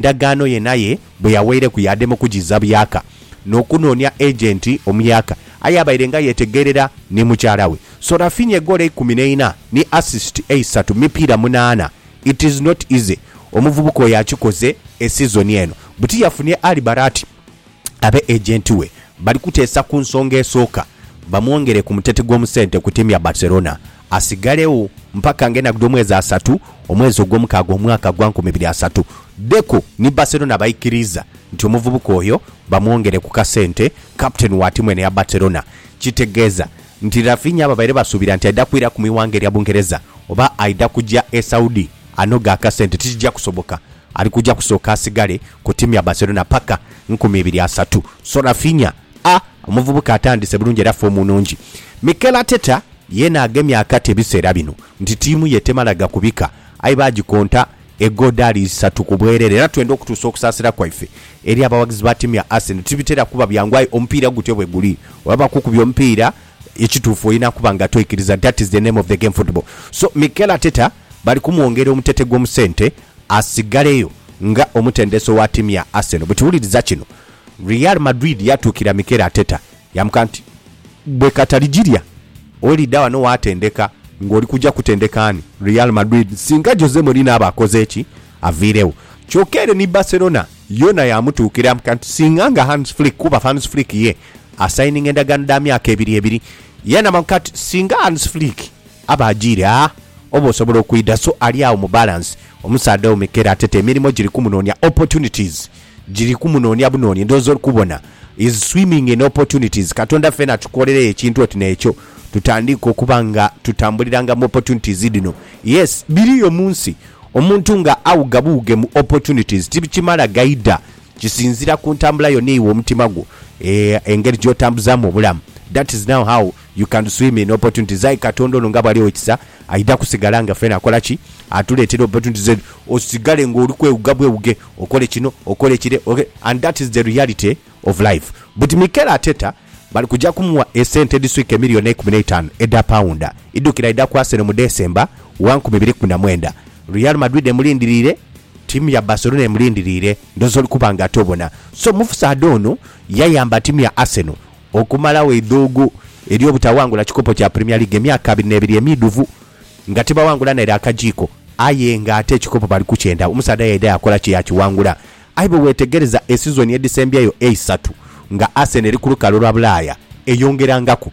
ndagaano ye naye bwe yaweireku yaadema okugiza byaka n'okunoonia agenti omuyaka aye abaire nga yetegeerera ni mukyala we. So Raphinha egoolo eikumi n'eina ni assist eisatu mu mipiira munaana. It is not easy omuvubuka oyo akikoze e sizoni eno. Buti yafunie Ali Barati. Aba agenti we bali kuteesa ku nsonga esooka bamwongere ku muteti gw'omu sente ku tiimu ya Barcelona asigalegho mpaka ng'enhagu dh'omwezi asatu omwezi ogwomukaaga omwaka gwa nkumi ibiri asatu. Deco ni Barcelona baikiriiza nti omuvubuka oyo bamwongere ku kasente kaputeni wa tiimu eno eya Barcelona. Kitegeeza nti Raphinha babaire basuubira nti aidha kwiraku mu ighanga erya Bungereza oba aidha kuja e Saudi. Anoga akasente tikija kusoboka ali kuja kusooka asigale ku tiimu ya Barcelona paka nkumi ibiri asatu. So Raphinha a omuvubuka atandise bulungi era foomu nnungi. Mikel Arteta yeena agemye akati ebiseera bino nti tiimu ye temala gakubika aye baagikonta egodaali isatu ku bwerere era twenda okutuusa okusaasira kwaife eri abawagizi ba tiimu ya Arsenal. Tibitera kuba byangu aye omupiira gutyo bwe guli oba bakukubye omupiira ekituufu olina kuba nga toikiriza that is the name of the game football so Mikel Arteta. bali kumwongera omutete gw'omu sente asigaleyo nga omutendesi owa ttiimu ya Arsenal. Bwe tuwuliriza kino, Real Madrid yaatuukira Mikel Arteta yaamuka nti, Bwe katali gilya olidha wano waatendeka ng'oli kuja kutendeka ani? Real Madrid singa Jose Mourinho aba akoze ki aviiregho. Kyokka ere ni Barcelona yoona yaamutuukira yaamuka nti, Singa nga Hans Flick kuba Hans Flick ye asayininga endagaano dha myaka ebiri ebiri. Yaanamamuka nti, Singa Hans Flick. Aba ajiire agha oba osobola okwidha so ali agho mu balance omusaadha omu kero atete emirimo giri kumunonia opportunities giri kumunonia bunoni ndhooza oli kubona is swimming in opportunities katonda fena atukolereyo ekintu oti nekyo tutandiike okuba nga tutambuliranga mu opportunities dhino yes biriyo munsi omuntu nga awuga buwuge mu opportunities tibikimala gaida kisinzira ku ntambula yo neiwe omutima gwo eeh engeri gyotambuzamu obulamu that is now how You can swim in opportunities aye katonda ono nga bwaliwo ekisa aidha kusigala nga fena akola ki? Atuletera opportunities edho osigale nga oli kwewuga bwewuge okole kino okole kire ok and that is the reality of life but Mikel Arteta bali kuja kumuwa esente edhiswika emillion eikumi neitanu edha paunda idhukira aidha ku Arsenal mu December wa nkumi ibiri kumi na mwenda Real Madrid emulindiriire tiimu ya Barcelona emulindiriire ndhooza oli kuba nga ate obona so mufusaadha ono yayamba tiimu ya Arsenal Okumalagho eidhuugu ery'obutaghangula kikopo kya Premier League emyaka abiri n'ebiri emiidhuvu nga tibaghangula naire akajiiko aye ng'ate ekikopo bali kukyenda, omusaadha yaidha yaakola ki? Yaakighangula. Aye bwew'etegereza esizoni edhisembyeyo eisatu nga Arsenal eri ku lukalu lwa Bulaaya, eyongerangaku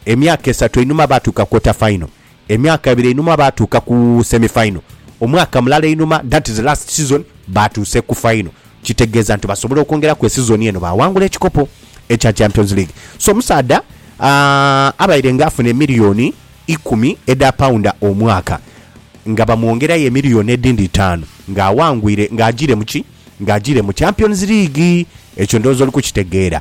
emyaka esatu einhuma baatuuka quarter final, Emyaka ebiri einhuma baatuuka ku semi final, omwaka mulala einhuma that is last season baatuuse ku final kitegeeza nti basobola okwongeraku esizoni eno baawangula ekikopo ekya Champions League. So omusaadha aah abaire nga afuna emiliyoni ikumi edha paunda omwaka nga bamwongerayo emiliyoni edhindi itaanu nga awangwire nga agiire mu ki? Nga agiire mu Champions League. Ekyo ndhowooza oli kukitegeera.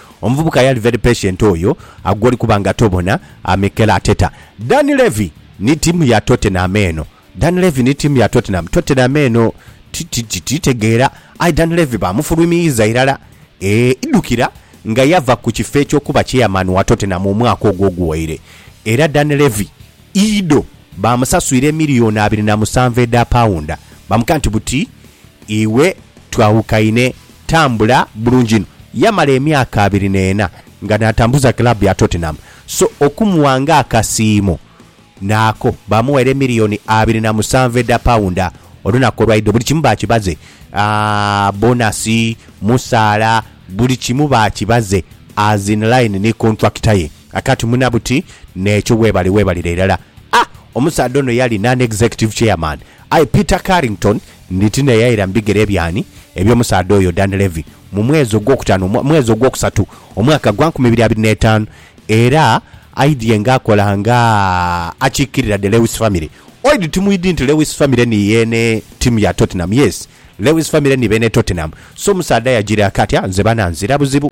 Omuvubuka yali very patient oyo gwoli kuba nga tobona amekela ateta. Dan Levy ni tiimu ya Tottenham eno. Dan Levy ni tiimu ya Tottenham. Tottenham eno titegeera. Aye Dan Levy baamufulumiyiza irala. Eeh, idhukira nga yava ku kifo eky'okuba chairman wa Tottenham omwaka ogwo oguwaire. Era Dan Levy. Ido baamusaswira emiliyoni abiri na musanvu edha paunda, bamugha nti, Buti iwe twawukaine, tambula bulungi inho. Yamala emyaka abiri n'ena nga n'atambuza club ya Tottenham, so okumugha ng'akasiimo naako baamuwaire emiliyoni abiri na musanvu edha paunda. Olunaku olwa Ido buli kimu baakibaze, bonasi, musaala, buli kimu baakibaze as in line ni kontulakita ye. Akati muna buti nekyo webale webalire irala a omusaadha ono yali non executive chairman aye Peter Carrington nditi neyaira mubigere byani ebyomusaadha oyo Dunlevy mu mwezi ogwokutano omwa mwezi ogwokusatu omwaka gwa nkumi ibiri abiri netano era aidhye nga akola nga akikirira the Lewis family oid timwidi nti Lewis family ni yene timu ya Tottenham yes Lewis family ni bene Tottenham so omusaadha yajira akati a nze bana nzira buzibu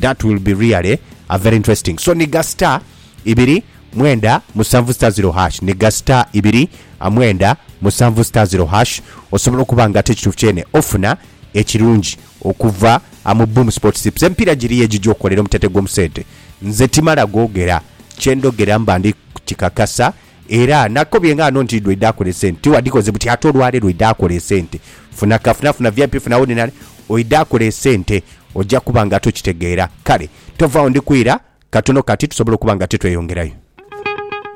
That will be really a very interesting so ni ga star ibiri mwenda musanvu star zero hash ni ga star ibiri mwenda musanvu star zero hash osobola okuba nga ate ekituufu kyene ofuna ekirungi okuva mu Boom Sports Tips emipiira giriyo egigya okukolera omuteete gw'omu sente nze timala googera kye ndhogera mba ndi kukikakasa Era nakobye nga ghano nti lwedaakola esente tiwadikoze buti ate olwale lwedaakola esente funa kafuna funa vip funa ordinary oidaakola esente oja kuba nga tokitegeera kale tovagho ndikwira katono kati tusobole okuba nga titweyongerayo.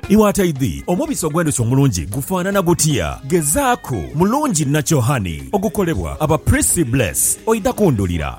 Iwe ataidhi omubisi ogw'endhuki omulungi gufaanana gutya? Gezaaku mulungi Nature'Honey ogukolebwa aba Prissy Bless oidha kundhulira.